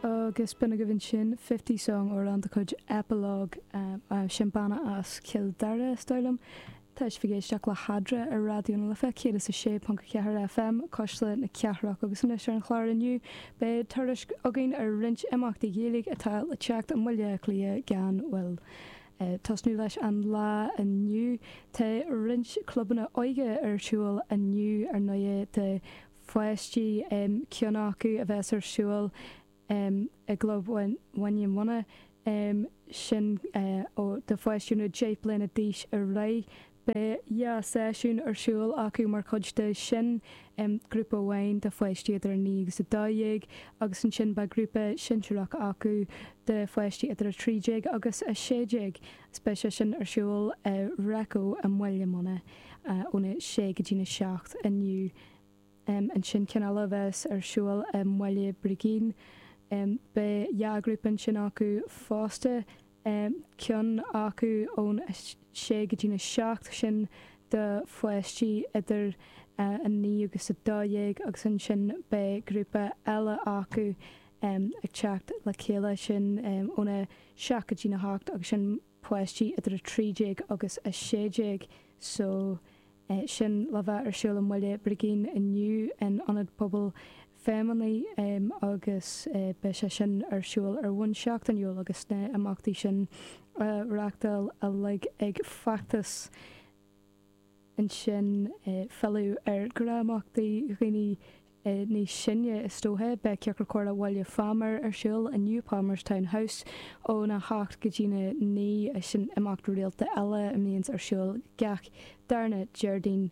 Agus b'in agaibh ansin Fifty Song amhrán de chuid Epilogue, sin banna as Cill Dara is dóigh liom, tá sibh ag éisteacht le hEadra ar Raidió na Life 106.4 FM, Cuisle na Cathrach agus anois ar an chlár inniu beidh tuairisc againn ar roinnt imeachtaí Gaeilge atá le teacht i mBaile Átha Cliath gan mhoill. Ag tosnú leis an lá inniu tá roinnt clubanna óige ar siúl inniu ar ndóigh, do pháistí, ceann acu a bheas ar siúl i gClub Bhaile Munna, sin do pháistí ó 10 bliana d'aois ar aghaidh. Beidh dhá seisiún ar siúl acu mar chuid de sin, grúpa amháin do pháistí idir 9 agus 12 agus ansin beidh grúpa sinsearach acu do pháistí idir 13 agus 16 agus beidh sé sin ar siúl i Reco i mBaile Munna óna sé go dtína seacht inniu. ansin ceann eile a bheas ar siúl i mBaile Brigín. Beidh dhá ghrúpa ansin acu fosta, ceann acu ón 6 go dtí'n 7, sin do pháistí idir 9 agus 12 agus ansin beidh grúpa eile acu ag teacht le chéile, sin ón 7 go dtí'n 8 agus sin páistí idir 13 agus 16 so sin le bheith ar siúl i mBaile Brigín inniu in Ionad Pobail Feidhmeannaigh agus beidh sé sin ar siúl ar bhonn seachtainiúil agus na himeachtaí sin á reachtáil uilig ag Feachtas ansin filleadh ar imeachtaí do dhaoine níos sine is dóiche. Beidh Ciorcal Comhrá Bhaile Phámar ar siúl inniu i Palmerstown House ón 8 go dtí'n 9 sin imeacht rialta eile a mbíonns ar siúl gach darna Déardaoin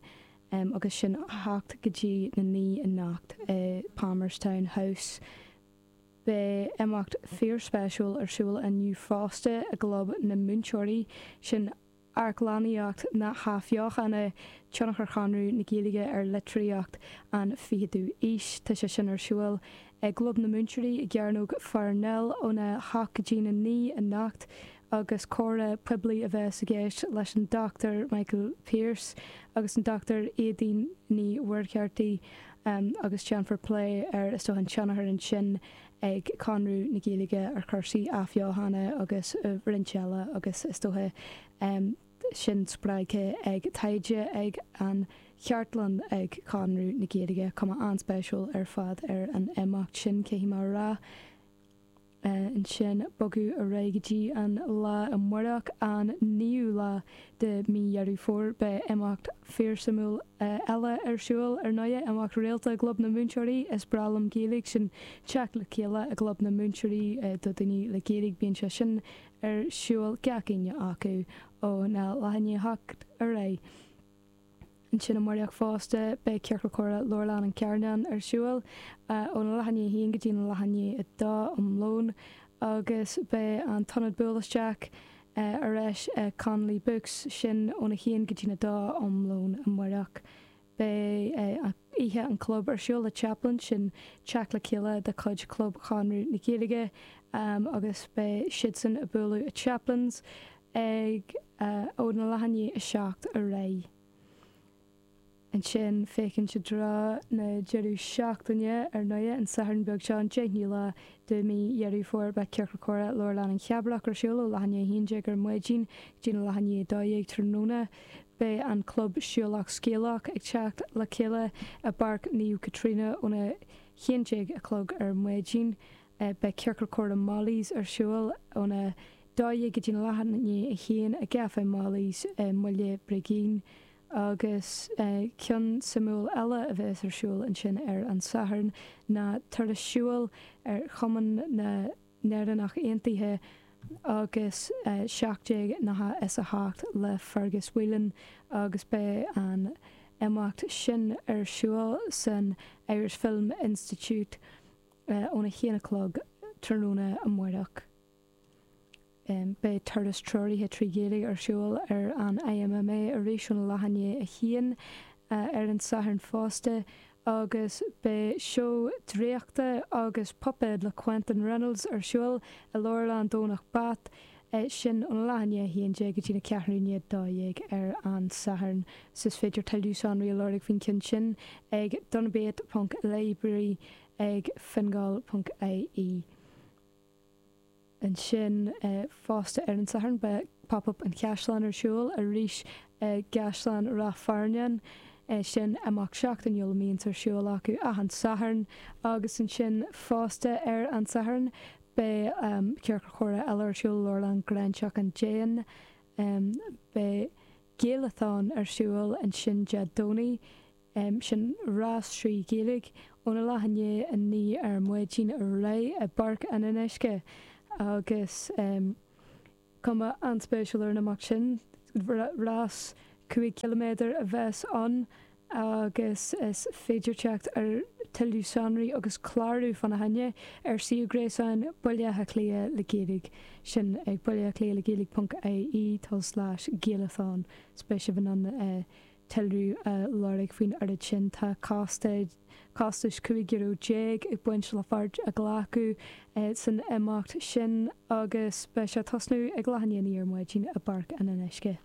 agus sin 8 go dtí na 9 anocht i Palmerstown House. Beidh imeacht fíorspéisiúil ar siúl inniu fosta i gClub na Múinteoirí, sin, Amharclannaíocht na hAthbheochana, Tionchar Chonradh na Gaeilge ar Litríocht an 20ú Aois, tá sé sin ar siúl i gClub na Múinteoirí i gCearnóg Pharnell ón 8-9 anocht agus comhrá poiblí a bheas i gceist leis an Dr Michael Pierse agus an Dr Éadaoin Ní Mhuircheartaigh agus déanfar plé ar, is dócha, an tionchar ansin ag Conradh na Gaeilge ar chúrsaí athbheochana agus roinnt eile agus is dócha sin spreagtha ag taighde ag an chartlann ag Conradh na Gaeilge, cuma an-spéisiúil ar fad ar an imeacht sin, caithfidh mé a rá. Ansin bogadh ar aghaidh go dtí an lá amárach, an 9ú lá de mhí Dheireadh Fómhair beidh imeacht fíor suimiúil eile ar siúl ar ndóighe, imeacht rialta i gClub na Múinteoirí. Is breá liom Gaeilge, sin teacht le chéile i gClub na Múinteoirí do daoine le Gaeilge, bíonn sé sin ar siúl gach Aoine acu óna leath i ndiaidh a hocht ar aghaidh. Ansin amáireach fosta, beidh Ciorcal Comhrá Leabharlann an Charnáin ar siúl óna leath i ndiaidh a haon go dtína leath i ndiaidh a dó um lón agus beidh an tIonad Buail Isteach ar ais ag Connolly Books, sin óna haon go dtína dó um lón amáireach. Beidh Oíche an Chlub ar siúl le Chaplin, sin teacht le chéile de chuid Chlub Chonradh na Gaeilge agus beidh siadsan ag bualadh i Chaplin's, ag óna leath i ndiaidh a 7 ar aghaidh. Ansin féachaint i dtreo na deireadh seachtaine, ar ndóigh, an Satharn beag seo, an 10ú lá de mhí Dheireadh Fómhair, beidh Ciorcal Comhrá Leabharlann an Chabrach ar siúl ó leath i ndiaidh 11 ar maidin go dtína leath i ndiaidh 12 tráthnóna. Beidh an club Siúlach Scéalach ag teacht le chéile i bPáirc Naomh Caitríona óna haon déag a chlog ar maidin. Beidh Ciorcal Comhrá Molly's ar siúl óna 12:00 go dtína leath i ndiaidh a haon i gCaifé Molly's i mBaile Brigín agus ceann suimiúil eile a bheas ar siúl ansin ar an Satharn ná turas siúil ar Chumann na nÉireannach Aontaithe agus 1798 le Fergus Whelan agus beidh an imeacht sin ar siúl san Irish Film Institute óna haon a chlog tráthnóna amáireach. Beidh turas treoraithe trí Ghaeilge ar siúl ar an IMMA arís óna leath i ndiaidh a haon ar an Satharn fosta agus beidh seó draíochta agus puipéad le Quentin Reynolds ar siúl i Leabharlann Dhomhnach Bat, sin óna leath i ndiaidh a haon déag go dtína ceathrú i ndiaidh a dó dhéag ar an Satharn. Is féidir tuilleadh sonraí a lorg faoin gceann sin ag donabate.library. ag Fingal.ie. Ansin fosta ar an Satharn beidh Pop Up an Chaisleáin ar siúl arís i gCaisleán Ráth Fearnáin, sin imeacht seachtainiúil a mbíonns ar siúl acu achan Satharn agus ansin fosta ar an Satharn beidh Ciorcal Comhrá eile ar siúl i Leabharlann Ghráinseach an Déin. Beidh Géalatán ar siúl ansin Dé Domhnaigh sin rás trí Ghaeilge óna leath i ndiaidh 9 ar maidin ar aghaidh i bPáirc an Fhionnuisce agus cuma an-spéisiúil ar an imeacht sin, rás 5 ciliméadar a bheas ann agus is féidir teacht ar tuilleadh sonraí agus clárú fána choinne ar suíomh gréasáin Bhaile Átha Cliath le Gaeilge, sin ag baileathacliathlegaeilge.ie slais Gaelathon más spéis libh ann tuilleadh a lorg faoin ócáid sin. Tá costas €15 ag baint le páirt a ghlacadh san imeacht sin agus beidh sé ag tosnú ag leath i ndiaidh a naoi ar maidin i bPáirc an Fhionnuisce.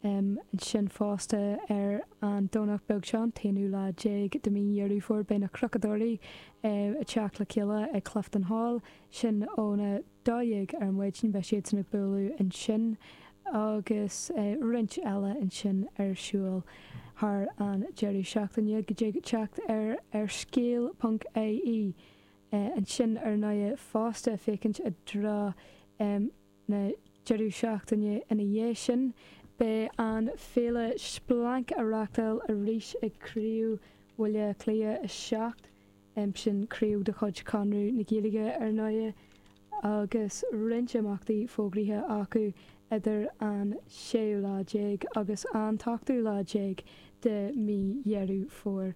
Ansin fosta ar an Domhnach beag seo, an t-aonú lá déag de mhí Dheireadh Fómhair, beidh na Cnocadóirí ag teacht le chéile ag Clifton Hall, sin óna. 12 ar maidin beidh siadsan ag bualadh ansin agus roinnt eile ansin ar siúl thar an deireadh seachtaine gur féidir teacht air ar scéal ponc ie ansin ar ndóigh fosta féachaint i dtreo na deireadh seachtaine ina dhiaidh sin beidh an féile splanc á reáchtáil arís ag craobh Bhaile Átha Cliath 7 sin craobh de chuid Chonradh na Gaeilge ar ndóigh, agus roinnt imeachtaí fógraithe acu idir an séú lá déag agus an t-ochtú lá déag de mhí Dheireadh Fómhair.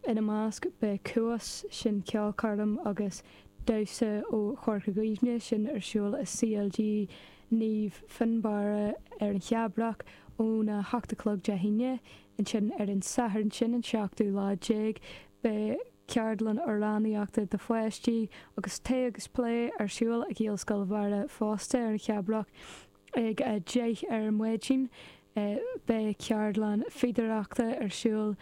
Ina measc beidh Cuas, sin ceolchoirm agus damhsa ó Chorca Dhuibhne, sin ar siúl i CLG Naomh Fionnbarra ar an Cheabrach óna hocht a chlog Dé hAoine, ansin ar an Satharn, sin an seachtú lá déag, Beidh ceardlann amhránaíochta do pháistí agus tae agus plé ar siúl i Gaelscoil Bharra fosta ar an Cheabrach ag 10 ar maidin. Beidh ceardlann fíodóireachta ar siúl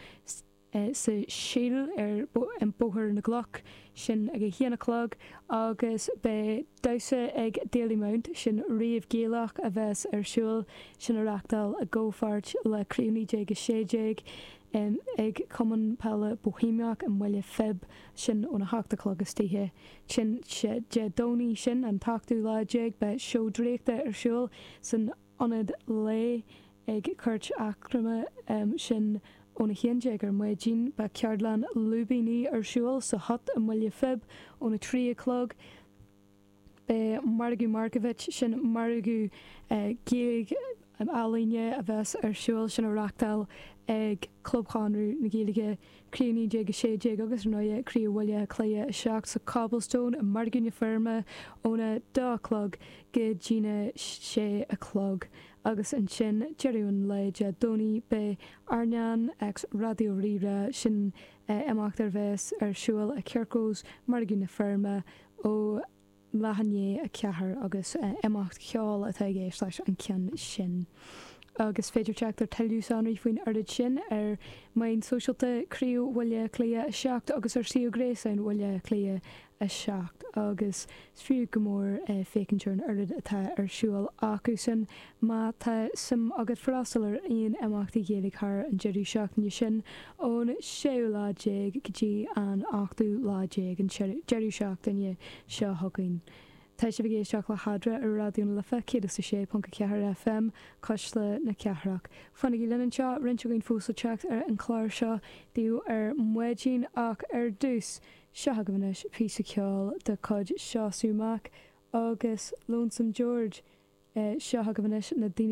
sa Síl ar Bhóthar na gCloch, sin ag 1 a chlog, agus beidh damhsa ag Dalymount, sin rave Gaelach a bheas ar siúl, sin á reáchtáil i gcomhpháirt le Criú 1916. em ag Cumann Peile Bóihéamach i mBaile Phib, sin óna hocht a chlog istoíche, sin Dé Dé Domhnaigh, sin an t-ochtú lá déag, beidh seó draíochta ar siúl san ionad lae ag Cúirt Eacnama, em sin óna haon déag ar maidin, beidh ceardlann lúibíní ar siúl sa Hut i mBaile Phib óna trí a chlog, Beidh Margadh Markiewicz, sin margadh Gaeilge ealaíne a bheas ar siúl, sin á reachtáil ag Club Chonradh na Gaeilge, Craobh 1916 agus, ar ndóighe, Craobh Bhaile Átha Cliath 7 sa Cobblestone i Margadh na Feirme óna dó a chlog go dtína sé a chlog agus ansin deireadh an lae Dé Domhnaigh beidh Airneán X Raidió Rí-Rá, sin imeacht a bheas ar siúl i Kirkos, Margadh na Feirme. Ó leath i ndiaidh 4 agus imeacht ceoil atá i gceist leis an gceann sin. Is féidir teacht ar tuilleadh sonraí faoin oiread sin ar mheáin sóisialta Chraobh Bhaile Átha Cliath 7 agus ar suíomh gréasáin Bhaile Átha Cliath 7 agus is fiú go mór féachaint ar an oiread atá ar siúl acusan Má tá suim agat freastal ar aon imeachtaí Gaeilge thar an deireadh seachtaine sin, ón séú lá déag go dtí an ochtú lá déag an deireadh seachtaine seo chugainn, tá sibh ag éisteacht le hEadra ar Raidió na Life 106.4 FM, Cuisle na Cathrach. Fanaigí linn anseo, roinnt againn fós le teacht ar an chlár seo, inniu ar maidin ach ar dtús, Seo chugaibh anois píosa ceoil de chuid Seosamh Mac agus Lonesome George. Seo chugaibh anois na daoine.